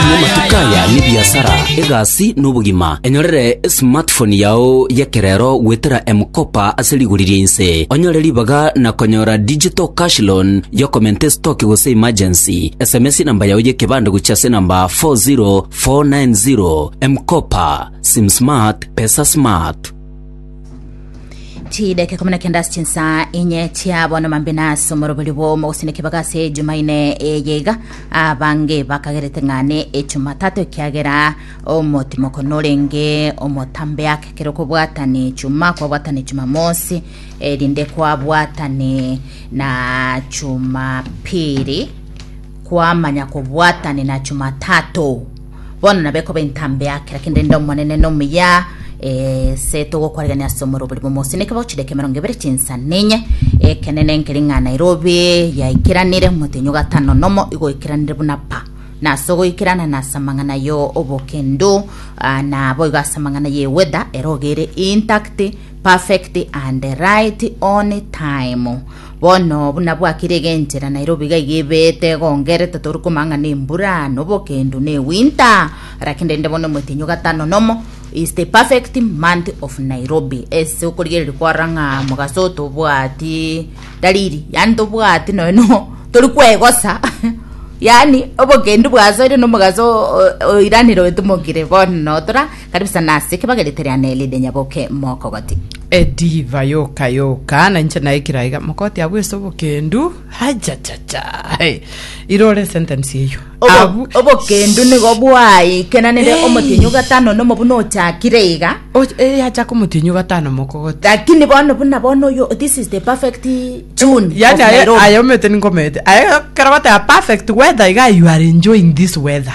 Namatuko aya nebiasara, egasi, na obogima. Enyorere esmartphone yao y'ekerero goetera M-Kopa ase rigori ria inse. Onyore ribaga na konyora digital cash loan y'okomenta estoki gose emergency. Sms enamba yao y'ekebande gochia ase enamba 40490. M-Kopa, Sim Smart, Pesa Smart. chideke kumi na kenda ase chinsa enye chia bono mambe na ase omorobori bwomo gose nekibaga ase ejumaine eye iga abange bakagerete ng'ane echumatato ekiagera omotimoko norenge omotambe ake kero kobwatane chuma kwabwatane chumamosi erinde kwabwatane na chumapiri kwamanya kobwatane na chumatato Bono nabo ekoba entambe ya kera kende inde Omonene nomuya, ese togokwarigania ase omoro oborimo omosineke bwa chideka emerongo ebere chinsa ninye, ekenene nkeri ng'a Nairobi yaikeranire omotenyi o gatano nomo igoikeranire buna pa na ase ogoikerana na ase amang'ana yo obokendo ah, na boigo ase amang'ana ye weather ero ogere intact perfect and right on time Bono buna bwakire egenchera Nairobi iga iga ebeete egongerete tori komanya ng'a nembura nobokendu ne winter lakini rende bono emotenyo gatano nomo is the perfect month of Nairobi ase okorigereria kwarora ng'a mogaso tobwati dalili yani tobwati noe no tori kwegosa yani obokendu bwasoire nomogaso oiranire oetomokire bono notora Kare besa nase kebagerete riane erinde nyaboke mokogoti. Ediva yoka yoka na inche naikira iga mokoti abwo ase obokendu ajajaja hey. irore sentence eyo Obo- Abu- obokendu nigo bwaikenanire Hey. omotienyi ogatano nomo buna ochakire iga O- eh, yacha komotienyi gatano mokogoti lakini bono buna bono oyo this is the perfect june yani of aye Nairobi. aye omete ninkomete aye kera bataya perfect weather iga you are enjoying this weather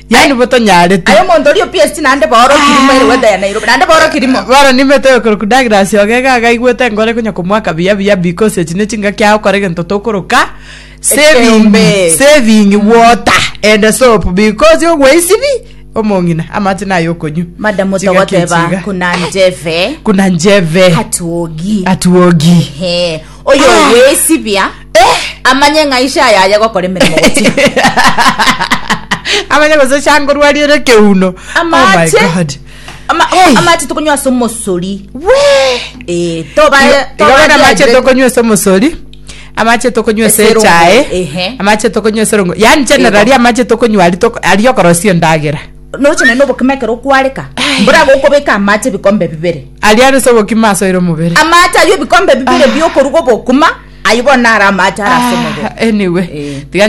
Yaani bo tonyarete. Aye omonto oria opiesti naende booro kirimo ere gwetaya Nairobi naende booro kirimo. Bono nimete oyokorokwa Douglas Ogega iga aigwete enkoro ekonya komoaka buya buya because echi ne chingaki agokora egento tokoroka saving Ekeombe. saving water and soap because ogweisibi omong'ina amache naye okonywa Madam Chingaki otogoteba echiga. kuna njeve kuna njeve hatuogi atuogi Ehe. oyogwesibia amanye ng'a ishe aye aye gokora emeremo gochia amanye gose changorwa riere ekeuno Oh my amache God. ama- Hey. amache tokonywa ase omosori Wee. Eh, toba- Igo- igo toba bono amache dehydrated. tokonywa ase omosori amache tokonywa ase Ase erongo, echae ehe. amache tokonywa ase erongo yaani generali Igo. amache tokonywa ari toko- ari okorosia endagera noche naende obokima ekero okwareka mbora gokobeka amache ebikombe bibere Aria arese obokima asoire omobere. Amaache ayio ebikombe bibere ah. biokoruga obokuma, ayio bono naro amaache arase ah, omobere. Anyway, eh. tiga